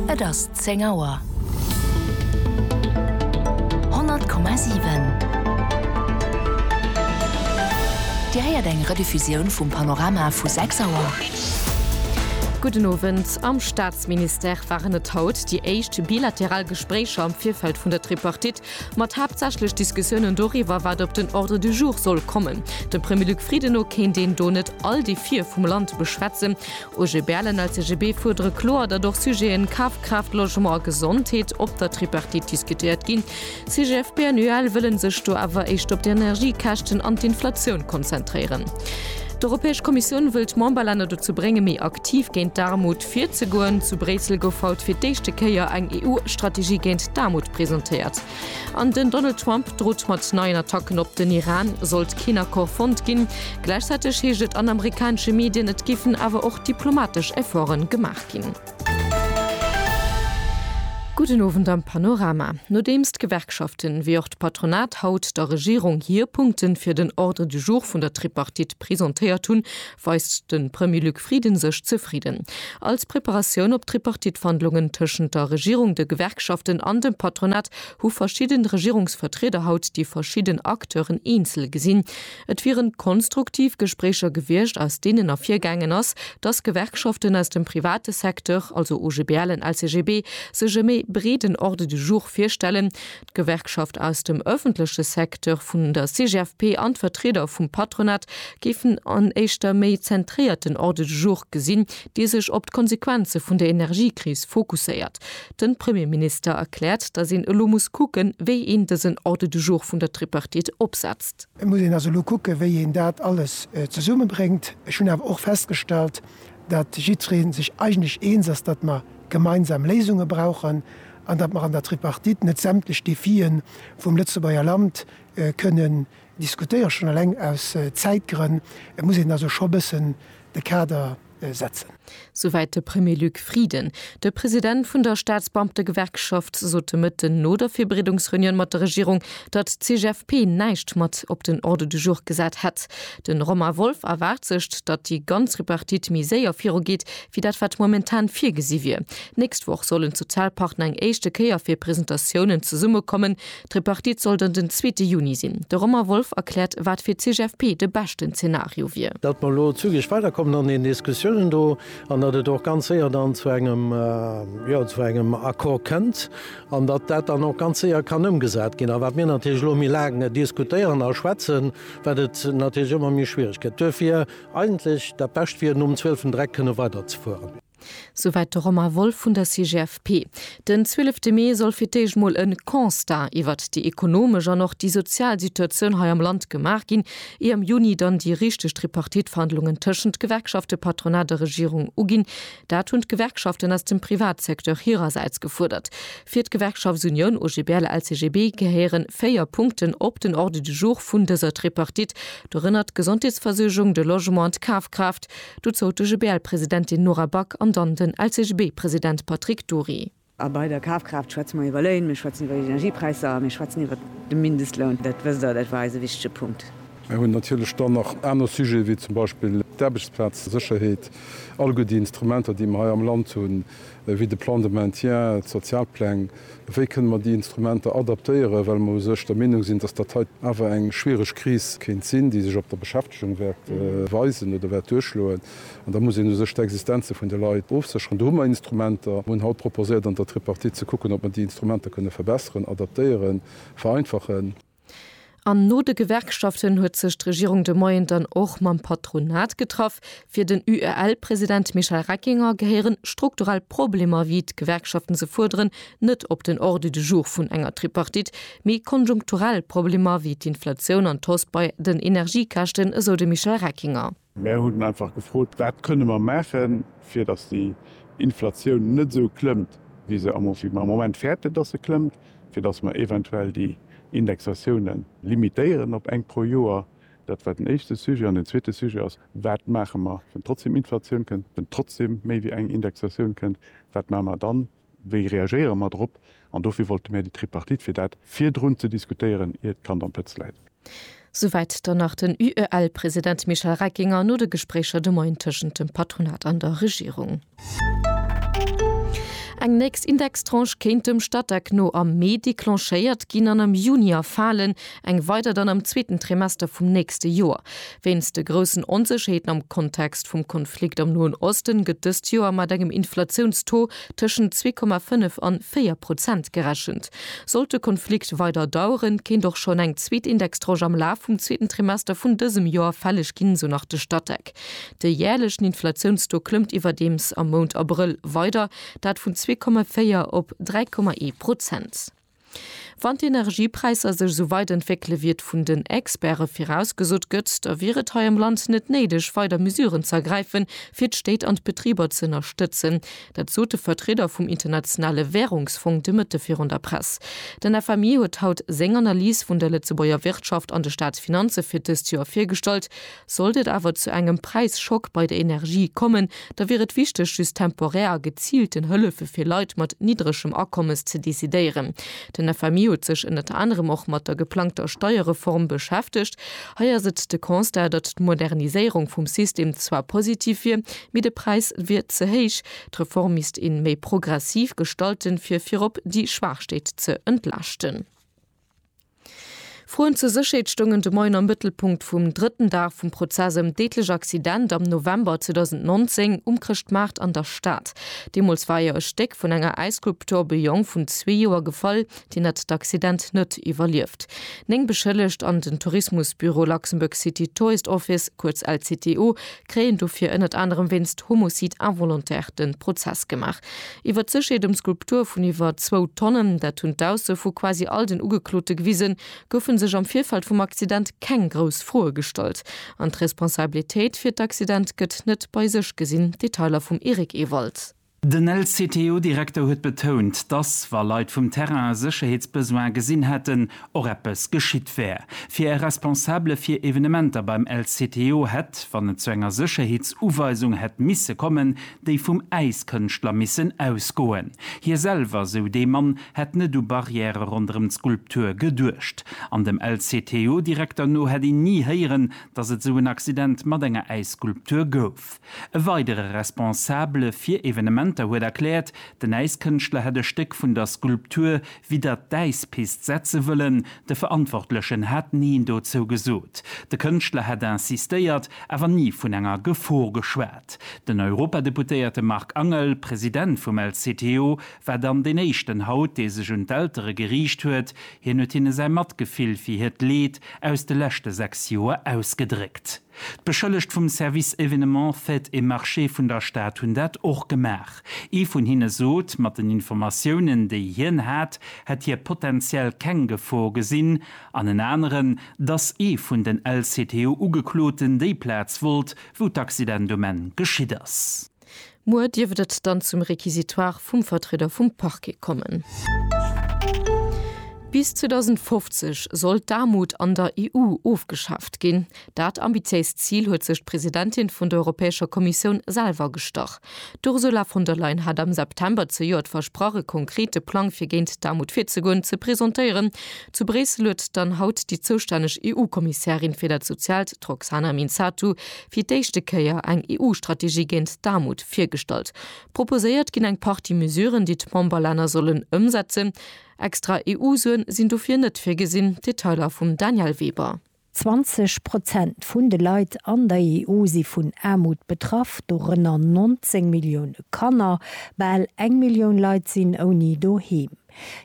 Et ass 10 Auer. 100,7 Dir héiert eng Rediffusioun vum Panorama vu 6 Auer. Gudden Owend. Am Staatsministère waren et haut déi éischt bilateral Gespréicher am Virfeld vun der Tripartite, mat haaptsächlech Diskussiounen doriwwer, wat op den Ordre du jour soll kommen. Dem Premier Luc Frieden no kéint een do net all déi Vir vum Land beschwätzen. OG Berlen a CGB fuerdere kloer, datt och Sujeten Kafkraaft, Logement a Gesondheet op der Tripartite diskutéiert ginn. CGFP an UEL wëlle sech do awer éischt op d'Energiekäschten an d'Inflatioun konzentréieren. D'Europäesch Kommissioun wëll d'Memberlänner dozou bréngen, méi aktiv géint d'Aarmut virzegoen. Zu Bréissel gouf haut fir d'éischte Kéier eng EU-Strategie géint d'Aarmut presentéiert. An den Donald Trump drot mat neien Attacken op den Iran, sollt keen Accord fonnt ginn. Gläichzäiteg heescht et an amerikanesche Medien, et géifen awer och diplomatesch Efforte gemaach ginn. Gudden Owend am Panorama. Nodeems d'Gewerkschaften ewéi och d'Patronat haut der Regierung hir Punkte fir den Ordre du jour vun der Tripartite presentéiert hunn, weist de Premier Luc Frieden sech zefridden. Als Preparatioun op d'Tripartite-Wandlungen tëschent der Regierung, de Gewerkschaften an dem Patronat hu verschidden Regierungsvertrieder haut déi verschidden Acteuren eenzel gesinn. Et wieren konstruktiv Gespréicher gewiescht, aus deenen ervirgaangen ass, dass Gewerkschaften aus dem private Secteur, also OGBL en LCGB, sech e méi breeden Ordre du jour virstellen, D'Gewerkschaft aus dem ëffentleche Secteur vun der CGFP an d'Vertrieder vum Patronat géifen en éischter méi zentréierten Ordre du jour gesinn, dee sech op d'Konsequenze vun der Energiekris fokusséiert. De Premierminister erkläert, datt een elo muss kucken, wéi een dësen Ordre du jour vun der Tripartite opsetzt. Et muss een also elo kucken, wéi een dat alles zesummebréngt. Ech hunn awer och festgestallt, datt jiddweree sech eigentlech eens ass, datt mer gemeinsam Léisunge brauchen an datt mer an der Tripartite net sämtlech Defie vum Lëtzebuerger Land kënnen diskutéieren, schonn eleng aus Zäitgrënn muss een also scho bëssen de Kader setzen. Souwäit de Premier Luc Frieden. De President vun der Staatsbeamtegewerkschaft sot de Mëtten no der Virbereedungsreunioun mat der Regierung, datt d'CGFP näischt mat op den Ordre du jour gesat hätt. De Romain Wolff erwaart sech, datt déi ganz Tripartite méi séier virugeet, wéi dat wat momentan virgesi wier. D'nächst Woch sollen d'Sozialpartner eng éischte Kéier fir Presentatiounen zesummekommen. D'Tripartite soll dann den zweete Juni sinn. De Romain Wolff erkläert, wat fir d'CGFP de beschten Zenario wier. Datt mer elo zügeg weiderkommen an den Diskussiounen do an datt et och ganz séier dann zu engem, jo, zu engem Accord kënnt an datt dat dann och ganz séier kann ëmgesat ginn. A wat mir natierlech elo méi laang diskutéieren a schwätzen, wat et natierlech ëmmer méi schwiereg gëtt. Duerfir. Eigentlech dat Bescht wier, nom zwielften Dreck kënne weider ze fueren. Souwäit de Romain Wolff vun der CGFP. Den zwielefte Mee soll fir d'éischt mol e Constat iwwert déi ekonomesch an och déi sozial Situatioun hei am Land gemaach ginn, ier am Juni dann déi richteg Tripartite-Verhandlungen tëschent Gewerkschafte, Patronat a Regierung uginn. Dat hunn d'Gewerkschaften aus dem Privatsecteur hirersäits gefuerdert. Fir d'Gewerkschaftsunioun OGBL-LCGB gehéiere véier Punkten op den Ordre du jour vun dëser Tripartite, dorënner d'Gesondheetsversuergung, de Logement an d'Kafkraaft. Dozou d'OGBL-Presidentin Nora Back an dann den LCGB-President Patrick Dury. A bei der Kafkraaft schwätze mer iwwer Léin, mir schwätzen iwwer Energiepräisser a mir schwätzen iwwer de Mindestloun. Dat wësst Der, dat war eis e wichtige Punkt. Mir hunn natierlech dann nach aner Sujete wéi zum Beispill d'Aarbechtsplazsécherheet, alleguer déi Instrumenter, déi mer hei am Land hunn, wéi de Plan de maintien, d'Sozialpläng. Wéi kënnen mer déi Instrumenter adaptéieren, well mer u sech der Meenung sinn, dass dat hei awer eng schwierig Kris kéint sinn, déi sech op der Beschäftigung wäert weisen oder wäert duerchschloen. An da muss een u sech d'Existenze vun de Leit ofsécheren. Do hu mer Instrumenter. Mer hunn haut proposéiert an der Tripartite ze kucken, ob mer déi Instrumenter kënne verbesseren, adaptéieren, vereinfachen. An no de Gewerkschaften huet sech d'Regierung de Moien dann och mam Patronat getraff. Fir den UEL-President Michel Reckinger gehéieren strukturell Problemer, wéi d'Gewerkschaften se fuerderen, net op den Ordre du jour vun enger Tripartite, mee konjunkturell Problemer wéi d'Inflatioun an d'Hausse bei den Energiekäschten, esou de Michel Reckinger. Mär hunn einfach gefrot, wat kënne mer maachen, fir datt déi Inflatioun net esou klëmmt, wéi se am Moment fäerten, datt se klëmmt, fir datt mer eventuell déi Indexatioune limitéieren op eng pro Joer. Dat war den éischte Sujet. An den zweete Sujet ass, Wat maache mer, wann trotzdem Inflatioun kënnt, wann trotzdem méi wéi eng Indexatioun kënnt, wat maache mer dann? Wéi reagéiere mer drop? An dofir wollte mir déi Tripartite, fir dat virdrun ze diskutéieren, ier d'Kand am Pëtz läit. Souwäit dann nach den UEL-President Michel Reckinger no de Gespréicher de Moien tëschent dem Patronat an der Regierung. Eng nächst Indextranche kéint dem Statec no am Mee declenchéiert ginn an am Juni erfalen. eng weider dann am zweeten Trimester vum nächste Joer. Wéinst de groussen Onsécherheeten am Kontext vum Konflikt am Noen Osten gëtt dëst Joer mat engem Inflatiounstaux tëschent zwee Komma fënnef an véier Prozent gerechent. Sollt de Konflikt weider daueren, kéint och schonn eng zweet Indextranche am Laf vum zweeten Trimester vun dësem Joer fälleg ginn, esou nach de Statec. De jäerlechen Inflatiounstaux klëmmt iwwerdeems am Mount Abrëll weider, dat vun zwee Komma véier op dräi Komma ee Prozent. Wann d'Energiepräisser sech esou weit entwéckele wéi et vun den Experte virausgesot gëtt, da wier et hei am Land net néideg, weider Mesuren ze ergräifen, fir d'Stéit an d'Betriber ze ënnerstëtzen. Dat sot de Vertrieder vum Internationale Wärungsfong de Mëtte virun der Press. Den FMI huet haut seng Analys vun der Lëtzebuerger Wirtschaft an de Staatsfinanze fir dëst Joer virgestallt. Sollt et awer zu engem Präisschock bei der Energie kommen, da wier et wichteg, just temporär a geziilten Hëllefe fir Leit mat niddregem Akommes ze decidéieren. Den FMI huet sech ënnert anerem och mat der geplangter Steierreform beschäftegt. Hei ass et de Constat, datt d'Moderniséierung vum System zwar positiv wier, mee de Präis wier ze héich. D'Reform misst een méi progressiv gestalten, fir virop déi Schwaach Stéit ze entlaaschten. Froen zur Sécherheet stoungen de Moien am Mëttelpunkt vum drëtten Dag vum Prozess ëm deedlech Accident am November 2019 um Chrëschtmaart an der Stad. Deemools war jo e Stéck vun enger Äisskulptur op e Jong vun zwee Joer gefall, deen hat d'Accident net iwwerlieft. Néng Beschëllegt an den Tourismusbüro Luxembourg City Tourist Office, kuerz LCTO, kréien dofir ënnert anerem wéinst Homicide involontaire de Prozess gemaach. Iwwert d'Sécherheet ëm d'Skulptur vun iwwer zwou Tonnen, dat hunn d'Ausse vu quasi all den Ugeklote gewisen, goufe sech am Virfeld vum Accident keng grouss Froe gestallt. An d'Responsabilitéit fir d'Accident gëtt net bei sech gesinn, Detailer vum Eric Ewald. Den LCTO-Direkter huet betount, dass, wa Leit vum Terrain e Sécherheetsbesoin gesinn hätten, och eppes geschitt wär. Fir e Responsabele fir Evenementer beim LCTO hätt, wann et zu enger Sécherheetsuweisung hätt misse kommen, déi vum Äiskënschtler missen ausgoen. Hie selwer, sou dee Mann, hätt net u Barrièrë ronderëm d'Skulptur geduecht. An dem LCTO-Direkter no hätt een ni héieren, dass et esou en Accident mat enger Äisskulptur gouf. E weidere Responsabele fir Evenementer huet erkläert, den Äiskënschtler hätt e Stéck vun der Skulptur widdert d'Äispist setze wëllen. De Verantwortlechen hat Neen dozou gesot. De Kënschtler hätt insistéiert, awer ni vun enger Gefor geschwat. Den Europadeputéierte Marc Angel, President vum LCTO, war dann deen éischten haut, dee sech un d'Eltere geriicht huet. Hien huet hinne säi Matgefill fir hiert Leed aus de leschte 6 Joer ausgedréckt. D'Beschëllegt vum Service Événements, Fêtes et Marchés vun der Stad hunn dat och gemaach. Ee vun hinne sot, mat den Informatiounen, déi hien hat, hätt hie potentiell keng Gefor gesinn, an en aneren, dass ee vun den LCTU-Ugekloten déi Plaz wollt, wou d'Accident um Enn geschitt ass. Muer dierft et dann zum Réquisitoire vum Vertrieder vum Parquet kommen. Bis 2050 soll d'Aarmut an der EU ofgeschaaft ginn. Dat ambitiéist Zil huet sech d'Presidentin vun der Europäescher Kommissioun selwer gestach. D'Ursula von der Leyen hat am September zejoert versprach, e konkrete Plang fir géint d'Aarmut virzegoen, ze presentéieren. Zu Bréissel huet dann haut déi zoustänneg EU-Kommissärin fir dat Soziaalt, d'Roxana Minzatu, fir d'éischte Kéier eng EU-Strategie géint d'Aarmut virgestallt. Proposéiert ginn eng Partie Mesuren, déi d'Memberlänner sollen ëmsetzen. Extra EU-Suen sinn dofir net virgesinn. Detailer vum Danièle Weber. 20 Prozent vun de Leit an der EU si vun Aarmut betraff, dorënner 19 Millioune Kanner. Bal eng Millioun Leit sinn ouni Doheem.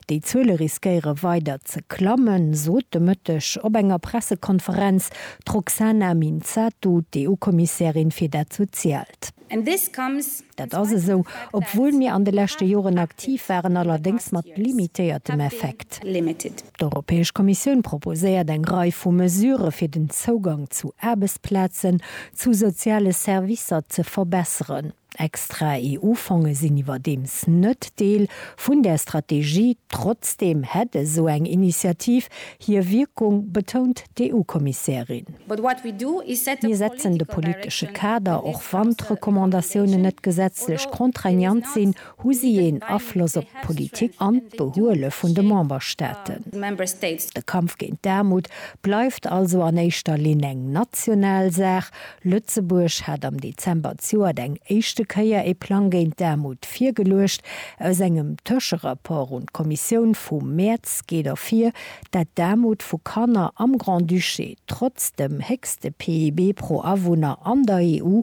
Déi Zuele riskéiere weider ze klammen, sot de Mëtteg op enger Pressekonferenz d'Roxana Minzatu, d'EU-Kommissärin fir dat Soziaalt. Dat ass esou, obwuel mir an de leschte Joren aktiv waren, allerdéngs mat limitéiertem Effekt. D'Europäesch Kommissioun proposéiert eng Rei vu Mesurë fir den Zougang zu Aarbechtsplazen, zu soziale Servicer ze verbesseren. Extra EU-Fonge sinn iwwerdeems net Deel vun där Strategie. Trotzdeem hätt esou eng Initiativ hir Wierkung, betount d'EU-Kommissärin. Mir setzen de politesche Kader, och wann d'Recommandatiounen net gesetzlech contraignant sinn, Hu si een Afloss op d'Politik an d'Behuele vun de Memberstaaten? De Kampf géint d'Aarmut bleift also an éischter Linn eng national Saach. Lëtzebuerg hat am Dezember d'Joert eng éischte Kéier ee Plang géint d'Aarmut virgeluecht. Aus engem Tëscherapport un d'Kommissioun vum Mäerz geet ervir, dat d'Aarmut vu Kanner am Grand-Duché trotz dem héchste PIB pro Awunner an der EU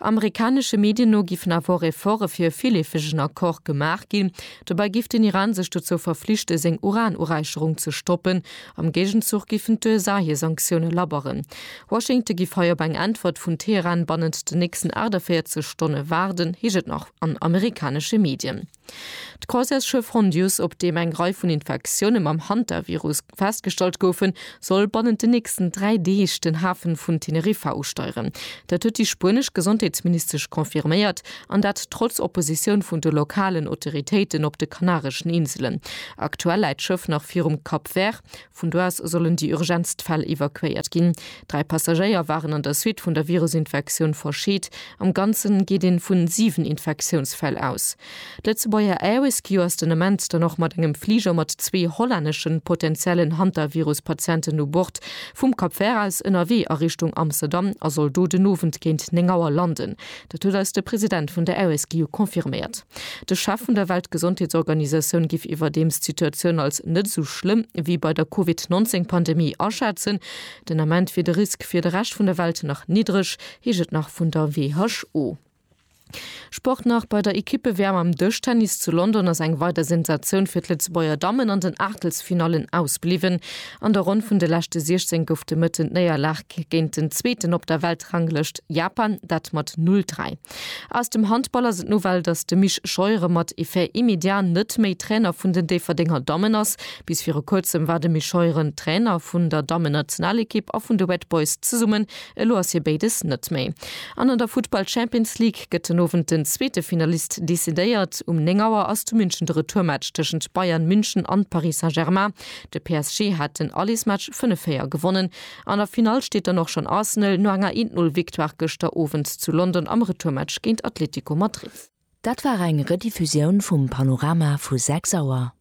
Amerikanesche Medien no giffen awer och Efforte fir e villeefegen Accord gemaach ginn. Dobäi giff den Iran sech dozou verflichte seng Uranuräicherung ze stoppen. Am Géigenzuch giffen d'USA hir Sanktioune labberen. Washington giff hei op eng Äntwert vun Teheran bannent den nächsten 48 Stonne waarden, heescht et nach an amerikanesche Medien. D'Croisièresschëff Hondius, op deem eng Rei vun Infektioune mam Hantavirus festgestallt goufen, soll bannent den nächsten dräi Deeg den Hafe vun Teneriffa usteieren. Dat huet déi spuenesch Gesondheetsministesch confirméiert, an dat trotz Oppositioun vun de lokalen Autoritéiten op de Kanareschen Inselen. Aktuell läit d'Schëff nach virum Cap Vert, Vun do aus sollen déi urgentst Fäll evakuéiert ginn. Dräi Passagéier waren an der Suite vun der Virusinfektioun verscheet. Am Ganzen geet een vu 7 Infektiounsfäll aus. D'Lëtzebuerger Air-Rescue ass den Ament dann och mat engem Fliger mat zwee hollänneschen potenziellen Hantavirus-Patienten u Bord vum Cap Vert aus ënnerwee a Richtung Amsterdam a soll do den Owend géint 9 Auer landen. Dat huet eis de President vun der RSGU confirméiert. De Chef vun der Weltgesondheetsorganisatioun giff iwwerdeems d'Situatioun als net esou schlëmm wéi bei der Covid 19 Pandemie aschätzen. Den Ament wier de Risk fir de Rescht vun der Welt nach niddreg, heescht et nach vun der WHO. Sport nach, Bei der Ekippe-WM am Dëschtennis zu London ass eng weider Sensatioun fir d'Lëtzebuerger Dammen an den Aachtelsfinallen ausbliwwen. An der Ronn vun de leschte 16 gouf de Mëtten d'Néierlag géint den Zweeten op der Weltranglëscht, Japan, dat mat 'Null dräi'. Aus dem Handball ass et d'Nouvelle, datt de Misch Scheuren mat effet immédiat net méi Trainer vun den Déifferdenger Dammen ass. Bis viru kuerzem war de Misch Scheuren Trainer vun der Dammennationalekipp a vun de Red Boys zesummen. Elo ass hie béides net méi. An an der Futtball Champions League gëtt den Owend den zweete Finalist decidéiert. Um 9 Auer ass zu München de Retourmatch tëschent Bayern München an Paris Saint-Germain. De PSG hat den Allesmatch 5-4 gewonnen. An der Finall steet dann och schonn Arsenal no enger 1 Null Victoire gëschter Owend zu London am Retourmatch géint Atletico Madrid. Dat war eng Rediffusioun vum Panorama vu 6 Auer.